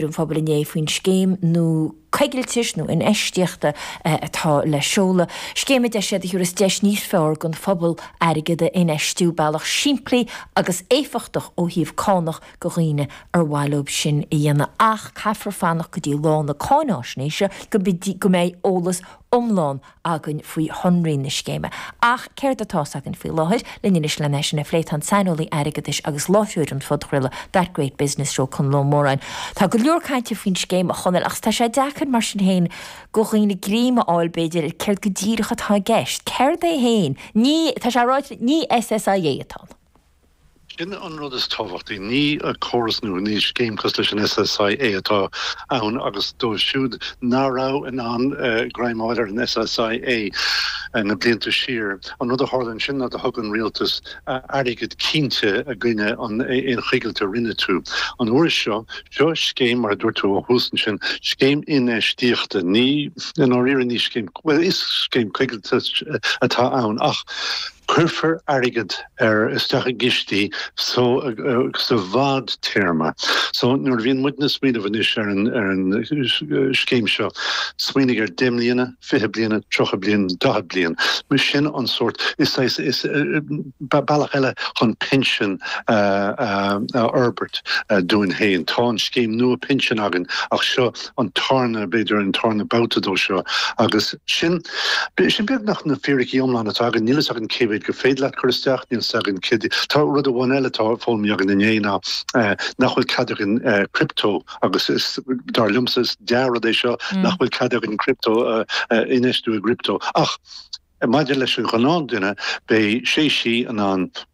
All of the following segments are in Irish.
ar an phobal inné faoin scéim nua coigiltis nó infheistíochta atá le seoladh, scéim a deir sé a thabharfas deis níos fearr don phobal airgead a infheistiú, bealach simplí agus éifeachtach ó thaobh cánach do dhaoine ar mhaith leo sin a dhéanamh ach caithfear fanacht go dtí lá na cáináisnéise go mbeidh eolas iomlán againn faoi shonraí na scéime. Ach céard atá 's againn faoi láthair? Linn anois len é sin a phlé, tá an saineolaí airgeadais agus láithreoir an phodchraoladh That Great Business Show, Conall Ó Móráin, Tá go leor cainte faoin scéim, a Chonaill, ach tá sé deacair mar sin féin do dhaoine greim a fháil, b'fhéidir, ar céard go díreach atá i gceist. Céard é féin? Ní, tá sé ráite, ní SSIA atá ann. Sin an rud is tábhachtaí. Ní córas nua, ní scéim cosúil leis an SSIA atá ann agus dóibh siúd ná raibh in ann greim a fháil ar an SSIA na blianta siar, an rud a tharla ansin ná do thug an rialtas airgead cinnte i gcoinne an aon choigilt a rinne tú. An uair seo, seo scéim, mar a dúirt tú ó thús ansin, scéim infheistíochta. Ní, i ndáiríre, ní scéim, bhuel is scéim coigiltis atá ann ach cuirfear airgead, ar isteach i gcistí so sa bhfadtéarma. So nuair a bhíonn muidne ag smaoineamh anois ar an scéim seo, smaoinigh ar 10 mbliana, 20 bliana, 30 bliain, 40 bliain. Sin an sórt, is saghas, is bealach eile chun pinsean a fhorbairt dúinn féin. Tá an scéim nua pinsin againn ach seo. an tarna, b'fhéidir an tarna babhta de seo agus sin, sin beagnach na fíricí iomlán atá againn. Níl fhios againn cé mhéad gur féidir leat cur isteach, níl fhios againn cé. Tá rud amháin eile atá foghlamtha againn inné ná nach bhfuil cead againn crypto agus is dar liomsa is dea-rud é seo nach bhfuil cead againn crypto infheistiú i gcrypto ach maidir leis an ghnáthduine beidh sé sí in ann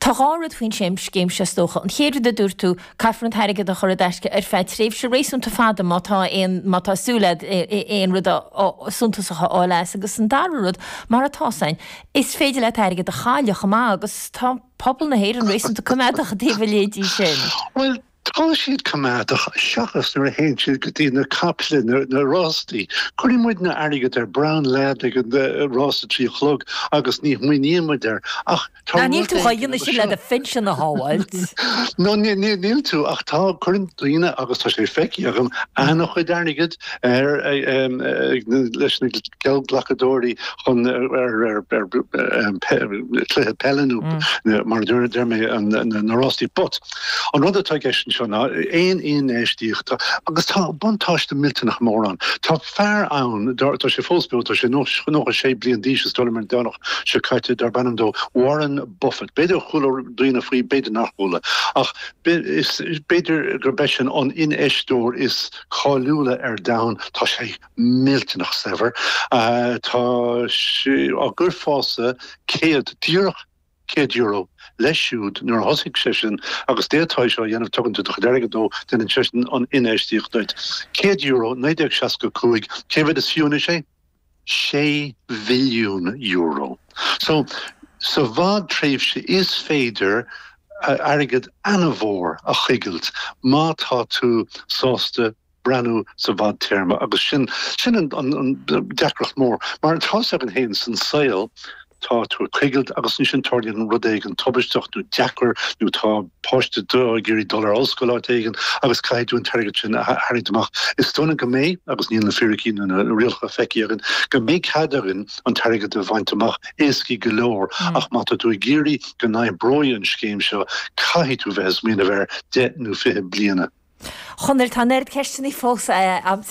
Tá dhá rud faoin scéim seo is dócha. An chéad rud a dúirt tú, caithfear an t-airgead a chur i dtaisce ar feadh tréimhse réasúnta fada má tá aon, má tá súil agat aon rud suntasach a fháil as. Agus an dara rud, mar atá 's againn, is féidir leat airgead a chailleadh chomh maith agus tá pobal na hÉireann réasúnta coimeádach i dtaobh a leithéidí sin. Bhuel, Tá siad coimeádach seachas nuair a théann siad go dtí na caiple, na rástaí. Cuireann muidne airgead ar Brown Lad ag an rás a trí a chlog agus ní shmaoiníonn muid air ach tá Ná níl rud tú chun éigin agus sin le seo. do phinsean a shábháilt. No níl tú ach tá, cuireann daoine agus tá sé feicthe agam ana-chuid airgead ar leis na geallghlacadóirí chun ar ar cluiche peile nó mar a deir mé na rástaí but. An rud atá i gceist anseo ná aon infheistíocht agus tá buntáiste millteanach mór ann. Tá fear ann, tá sé fós beo, tá sé nócha sé bliain d'aois, sílim an Domhnach seo caite, darb ainm dó Warren Buffett. B'fhéidir gur chuala daoine faoi, b'fhéidir nár chuala. Ach b'fhéidir gurb eisean an infheisteoir is cáiliúla ar domhan. Tá sé millteanach saibhir. Tá sé ag cur fás céad, díreach €100 leis siúd nuair a thosaigh seisean agus d'fhéadfáí seo a dhéanamh tugann tú do chuid airgid dó, déanann seisean an infheistíocht duit. €100, 1965 Cé mhéad is fiú anois é? sé mhilliún euro. So, sa bhfadtréimhse is féidir airgead ana-mhór a choigilt má tá tú sásta breathnú sa bhfadtéarma agus sin an an deacracht mór. Mar atá sé againn féin san saol, tá tú ag coigilt agus ansin tarlaíonn an rud éigin tubaisteach nó deacair nó tá páiste duit ag iarraidh dul ar ollscoil áit éigin agus caithfidh tú an t-airgead sin a tharraingt amach. Is dócha go mbeidh, agus níl na fíricí nó na rialacha feicthe againn, go mbeidh cead againn an t-airgead a bhaint amach, éasca go leor, ach má tá tú ag iarraidh go n-oibreoidh an scéim seo, caithfidh tú bheith ag smaoineamh ar deich nó fiche bliana. Chonaill, tá an oiread ceisteanna fós a'm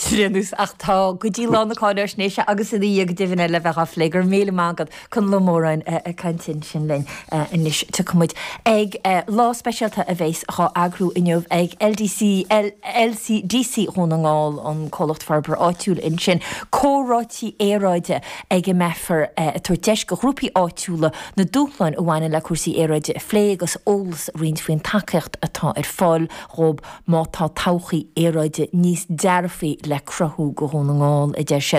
ach tá go dtí lá na cáináisnéise agus ina dhiaidh go deimhin le bheith dhá phlé. Go raibh míle maith agat, Conall Ó Móráin ag caint ansin linn anois. Tiocfaidh muid ag lá speisialta a bhéas dhá eagrú inniu ag LDC, LCDC Dhún na nGall, an Comhlacht Forbartha Áitiúil ansin, comhráití aeráide ag a mbeifear ag tabhairt deis go ghrúpaí áitiúla na dúshláin a bhaineann le cúrsaí aeráide a phlé agus eolas a roinnt faoin tacaíocht atá ar fáil. Dhóibh. Má tá todhchaí aeráide níos dearfaí le cruthú go Dhún na nGall, a deir siad,